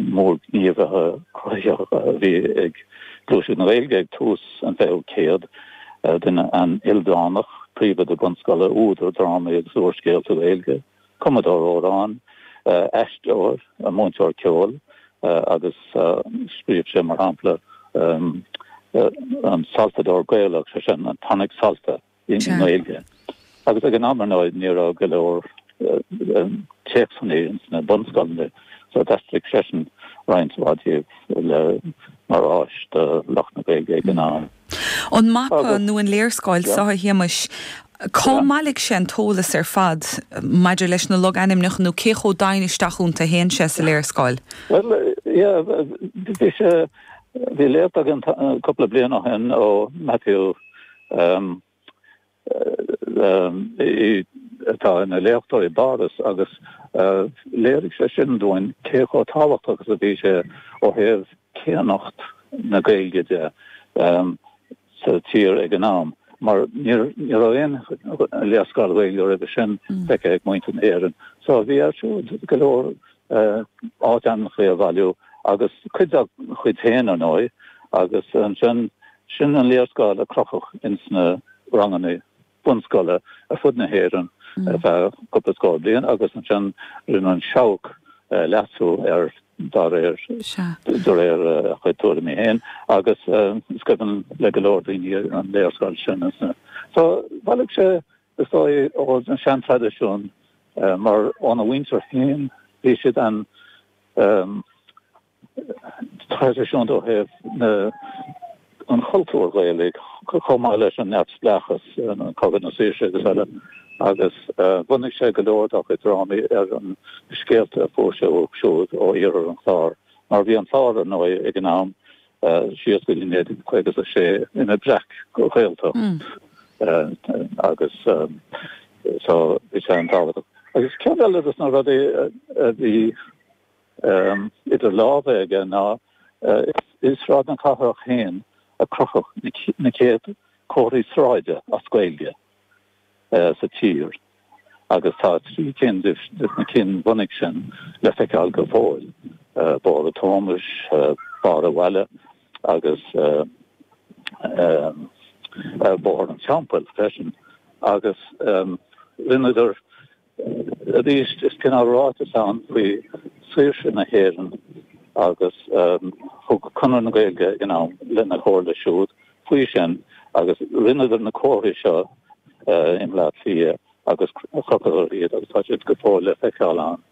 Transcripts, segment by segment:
mór gníomhaithe cruthaitheacha a bhí ag gluaiseacht na Gaeilge ag tús an 20ú céad, duine an-ildánach, príomhoide bunscoile, údar drámaí agus úrscéalta Gaeilge, cumadóir amhrán, aisteoir, múinteoir ceoil agus scríobh sé, mar shampla, an Solfadóir Gaelach, sé sin, an Tonic Solfa. i nGaeilge agus ag an am ar ndóigh ní raibh go leor téacsanna ins na bunscoileanna so d'aistrigh seisean roinnt mhaith díobh le mar áis do lucht na Gaeilge ag an am. An mapa nó an léarscáil seo, a Thomáis, cár bhailigh sé an t-eolas ar fad maidir leis na logainmneacha nó cé chomh domhain isteach iontu a théann sé sa léarscáil? Bhuel, yeah, bhí sé, bhí léacht againn cúpla bliain ó shin ó Matthew um, um, i, atá ina léachtóir i bPáras agus uh, léirigh sé sin dúinn cé chomh tábhachtach is a bhí sé ó thaobh céannacht na Gaeilge de um, sa tír ag an am. Mar ní raibh aon léarscáil Ghaeilge roimhe sin mm. feicthe ag muintir na hÉireann. So bhí air siúd go leor áitainmneacha a bhailiú agus cuid dá chuid féin, ar ndóigh, agus ansin sin an léarscáil a crochadh ins na ranganna bunscoile ar fud na hÉireann ar feadh cúpla scór bliain agus ansin rinne An Seabhac leasú air dá réir, de réir a chuid tuairimí féin, agus is cuimhin le go leor daoine an léarscáil sin. So bhailigh sé Is dóigh ó na seantraidisiúin mar óna mhuintir féin bhí siad an-traidisiúnta ó thaobh na an chultúr Ghaelaigh chomh maith leis an neamhspleáchas cogadh na saoirse agus eile agus bhunaigh sé go leor dá chuid drámaí ar an scéalta a fuair sé uathu siúd ó iarthar an Chláir mar bhí an Clár ar ndóigh ag an am Tá síos go dtí 1956 ina breac-Ghaeltacht agus so bhí sé an-tábhachtach. Agus ceann eile de na rudaí a bhí idir lámha aige ná i Sráid na Cathrach fhéin a crochadh na céad comharthaí sráide as Gaeilge sa tír. agus tá trí cinn de na cinn bhunaidh sin le feiceáil go fóill, Barr an Tomais, Barr an Bhaile agus Bóthar an Teampaill freisin. Agus rinneadar arís is cineál ráiteas ann faoi saoirse na hÉireann agus thug Conradh na Gaeilge in am lena chomhairle siúd, faoi sin, agus rinneadar na comharthaí seo i mBleá Cliath agus chrochadar iad agus tá siad go fóill le feiceáil ann.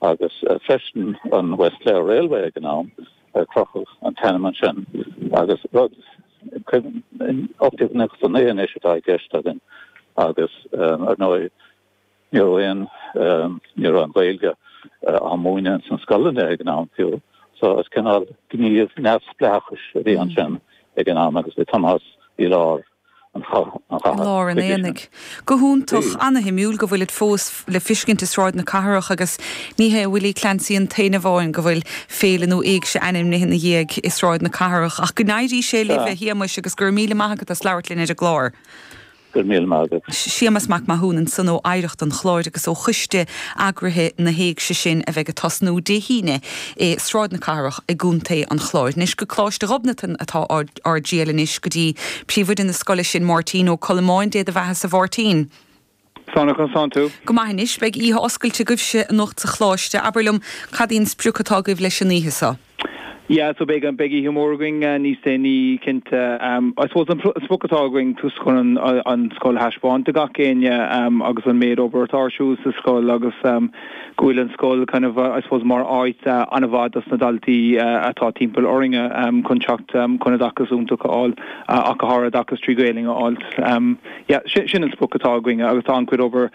Agus freisin an West Clare Railway ag an am a crochadh an t-ainm ansin agus rud, cuimhnigh, 1899 anois atá i gceist againn agus ar ndóigh, Ní raibh aon, ní raibh an Ghaeilge á múineadh ins na scoileanna ag an am fiú so is cineál gníomh neamhspleáchais a bhí ansin ag an am agus bhí Tomás i lár an chatha. I lár an aonaigh. Go hiontach, ana-shuimiúil go bhfuilid fós le fiscint i Sráid na Cathrach agus ní hé Willie Clancy an t-aon amháin go bhfuil féile nó éigse ainmnithe ina dhiaidh i Sráid na Cathrach ach go n-éirí sé libh a Shéamuis agus go raibh míle maith agat as labhairt linn ar an gclár. Go raibh míle maith agat. Séamus Mac Mathúna ansan ó Oidhreacht an Chláir agus ó choiste eagraithe na hÉigse sin a bheidh ag tosnú Dé hAoine i Sráid na Cathrach i gContae an Chláir. Anois go Coláiste Ghobnatan atá ár dtriall anois, go dtí príomhoide na scoile sin, Máirtín Ó Colmáin, Dé do bheathasa a Mháirtín. Go maire slán tú. Go maith anois, beidh oíche oscailte agaibhse anocht sa choláiste. Abair liom, cad í an sprioc atá agaibh leis an oíche so? Yeah so beidh beidh oíche mór againn níos déanaí cinnte. I suppose an sprioc atá againn tús chun an scoil a thaispeáint do gach éinne agus an méid obair atá ar siúl sa scoil agus go bhfuil an scoil kind of I suppose mar áit an-mhaith dos na daltaí atá timpeall orainne chun teacht chun oideachas iontach a fháil ach go háirid oideachas trí Gaelainn a fháil. Yeah, sin an sprioc atá againn agus tá an-chuid obair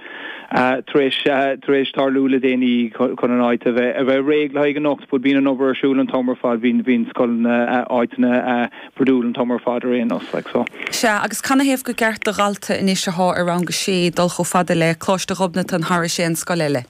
tar éis, tar éis tarlú le déanaí chun an áit a bheith, a bheith réidh le haghaidh anocht. Bhuel bíonn an obair ar siúl an t-am ar fad, bíonn scoileanna, áiteanna bruidiúil an t-am ar fad ar aon nós, like, so. Sea, agus canathaobh gur ceart do dhalta anois athá i rang a sé dul chomh fada le Coláiste Ghobnatan thar aon scoil eile.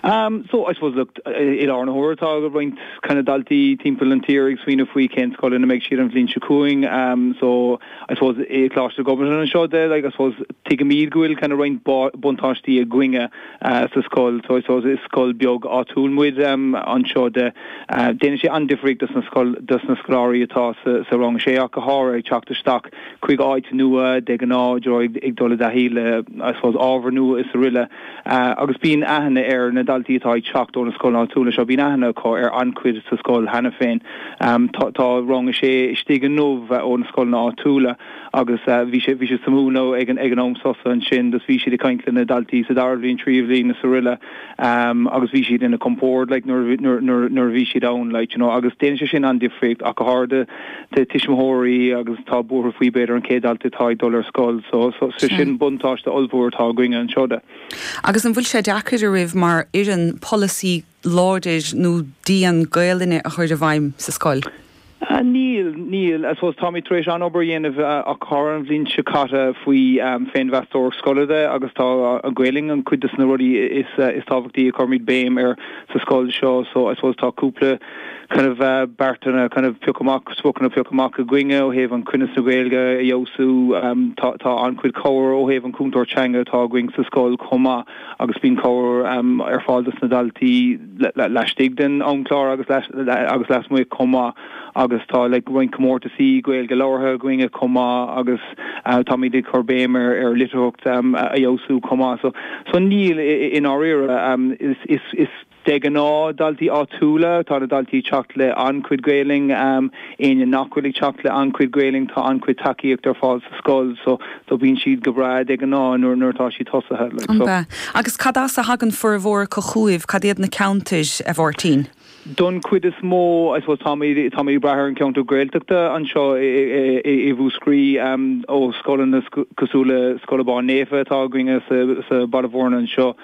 Am, so I suppose look, i láthair na huaire tá roinnt kind of daltaí timpeall an tír ag smaoineamh faoi cén scoil ina mbeidh siad an bhliain seo chugainn, am so I suppose i Coláiste Ghobnatan anseo de like I suppose tuigimid go bhfuil kind of roinnt buntáistí againne sa scoil so I suppose is scoil beag áitiúil muid am anseo de. Déanann sé an-difríocht dos na scoil dos na scoláirí atá sa rang a sé ach go háirithe ag teacht isteach chuig áit nua de ghnáth iad ag dul i dtaithí le I suppose ábhar nua is araile. Agus bíonn aithne ar na daltaí atá ag teacht ó na scoileanna áitiúla seo, bíonn aithne acu ar an-chuid sa scoil cheana féin. Tá rang a sé istigh inniu ó na scoileanna áitiúla agus bhí siad amuigh ag an am sosa ansin agus bhí siad ag caint le na daltaí sa dara bhliain, tríú bhliain is araile agus bhí siad ina gcompórd nuair a bhí siad ann. Agus déanann sé sin an-difríocht ach go háirithe. de tuismitheoirí agus tá buartha faoi b'fhéidir an chéad dalta atá ag dul ar scoil so so so sin buntáiste ollmhór atá againne anseo de. Agus an bhfuil sé deacair riamh mar fhoireann polasaí láidir nó dian Gaolainne a chur i bhfeidhm sa scoil? Níl, níl. I suppose táimid tar éis an-obair a dhéanamh thar na blianta caite faoi féinmheastóireacht scoile de agus tá an Ghaolainn an cuid des na rudaí is tábhachtaí a chuirimid béim air sa scoil seo so I suppose tá cúpla kind of beartanna kind of pioctha amach, spriocanna pioctha amach againne ó thaobh an cruinneas na Gaeilge a fheabhsú. Tá tá an-chuid cabhair ó thaobh an cúntóir teanga atá againn sa scoil chomh maith agus bíonn cabhair ar fáil dos na daltaí la laistigh den amchlár agus la agus lasmuigh chomh maith agus tá like roinnt comórtasaí Gaeilge labhartha againne chomh maith agus táimid ag cur béim ar ar litearthacht a fheabhsú chomh maith. So so níl i i i ndáiríre is is is De ghnáth, daltaí áitiúla atá na daltaí ag teacht le an-chuid Gaelainn. Éinne nach bhfuil ag teacht le an-chuid Gaelainn tá an-chuid tacaíocht ar fáil sa scoil so so bíonn siad go breá de ghnáth nuair nuair atá siad tosaithe like so. Agus cad as a thagann formhór acu chugaibh, cad iad na ceantair, a Mháirtín? Don chuid is mó, I suppose táimid táimid ag brath ar an cheantar Gaeltachta anseo i Mhúscraí ó scoileanna cosúil le Scoil Abán Naofa atá againne sa Baile Bhúirne anseo.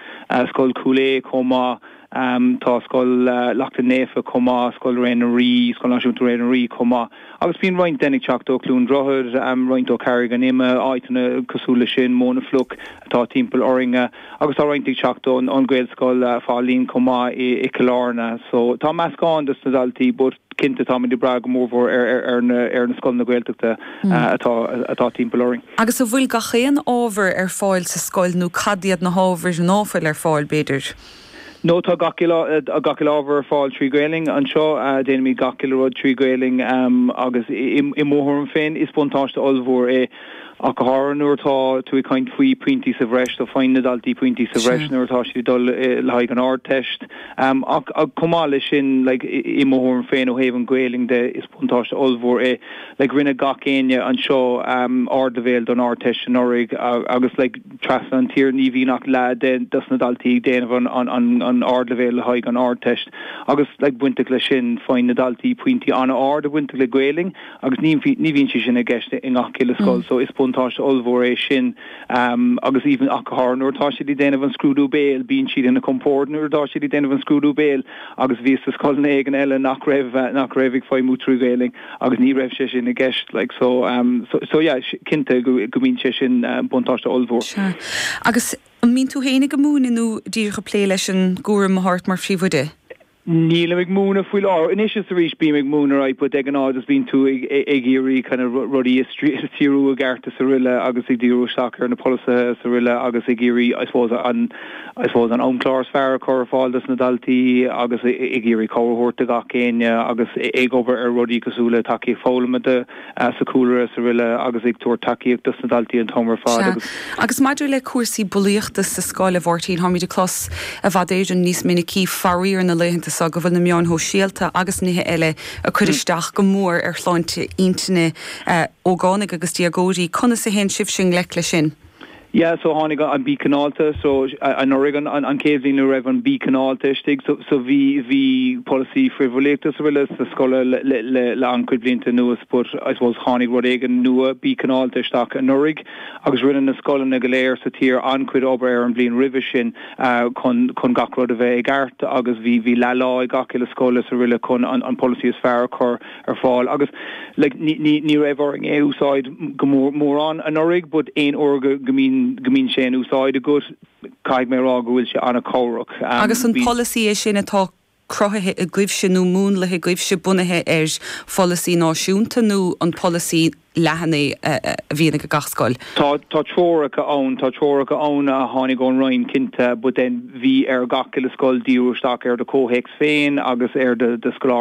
Scoil Chúil Aodha chomh maith. Tá Scoil Lachtaín Naofa chomh maith, Scoil Réidh na nDoirí, Scoil Náisiúnta Réidh na nDoirí chomh maith. Agus bíonn roinnt den ag teacht ó Cluain Droichead, roinnt ó Carraig an Ime, áiteanna cosúil le sin, Muine Fliuch atá timpeall orainne. Agus tá roinnt ag teacht ón Gaelscoil Faithleann chomh maith i Cill Airne. So tá meascán des na daltaí but. Cinnte táimid ag brath go mórmhór ar na scoileanna Gaeltachta atá timpeall orainn. Agus an bhfuil gach aon ábhar ar fáil sa scoil nó cad iad na hábhair ná fuil ar fáil, b'fhéidir? No, tá gach uile ábhar ar fáil trí Ghaelainn anseo. Déanaimid gach uile rud trí Ghaelainn agus i mo thuairim féin is buntáiste ollmhór é. ach go háirithe nuair atá tú ag caint faoi pointí sa bhreis, so faigheann na daltaí pointí sa bhreis nuair atá siad ag dul le haghaidh an Ardteist. Ach chomh maith leis sin, like, i mo thuairim féin ó thaobh an Ghaelainn de, is buntáiste ollmhór é. Like, rinne gach éinne anseo ardleibhéal don Ardteist anuraidh agus, like, trasna an tír ní bhíonn ach leath dos na daltaí ag déanamh an ardleibhéil le haghaidh an Ardteist agus, like, bainteach leis sin, faigheann na daltaí pointí an-ard bainteach le Gaelainn. agus ní bhíonn sé sin i gceist i ngach uile scoil, so is buntáiste ollmhór é sin agus even ach go háirithe nuair atá siad ag déanamh an scrúdú béil, bíonn siad ina compord nuair atá siad ag déanamh an scrúdú béil agus bhíos i scoileanna éigin eile nach raibh, nach raibh ag feidhmiú trí Ghaolainn agus ní raibh sé sin i gceist like so, so yeah cinnte go mbíonn sé sin buntáiste ollmhór. Agus an mbíonn tú féin ag múineadh nó díreach ag plé leis an gcúram a thabhairt mar phríomhoide? Nílim ag múineadh faoi láthair. Anois is arís bím ag múineadh right but de ghnáth just bíonn tú ag iarraidh kind of rudaí a stiúradh i gceart is araile agus ag díriú isteach ar na polasaithe is araile agus ag iarraidh I suppose an I suppose an amchlár is fearr a chur ar fáil dos na daltaí agus ag iarraidh cabhair a thabhairt do gach éinne agus ag obair ar rudaí cosúil le tacaíocht foghlama do sa chúlra is araile agus ag tabhairt tacaíocht dos na daltaí an t-am ar fad Sea. agus. Agus maidir le cúrsaí bulaíochta sa scoil, a Mháirtín, táimid ag clos i bhfad Éireann níos minicí faraor na laethanta seo go bhfuil na meáin shóisialta agus nithe eile ag cur isteach go mór ar shláinte intinne ógánaigh agus déagóirí. Conas a théann sibhse i ngleic leis sin? Yeah, so tháinig an Bí Cineálta, so anuraidh an an chéad bhliain a raibh an Bí Cineálta istigh, so so bhí bhí polasaí frithbhulaíochta is araile sa scoil le le le an chuid blianta anuas but I suppose tháinig rud éigin nua, Bí Cineálta, isteach anuraidh agus rinne na scoileanna go léir sa tír an-chuid obair ar an bhliain roimhe sin chun chun gach rud a bheith i gceart agus bhí bhí leath lá ag gach uile scoil is araile chun an an polasaí is fearr a chur ar fáil agus like ní ní ní raibh orainn é a úsáid go mór mórán anuraidh but aon uair go go mbíonn go mbíonn sé in úsáid agat caithfidh mé a rá go bhfuil sé ana-chabhrach Agus an polasaí é sin atá cruthaithe agaibhse nó múnlaithe agaibhse bunaithe ar pholasaí náisiúnta nó an polasaí leathan é a a bhíonn ag gach scoil? Tá tá treoracha ann tá treoracha ann a tháinig ón Roinn cinnte but then bhí ar gach uile scoil díriú isteach ar do chomhthéacs féin agus ar do do scoláirí.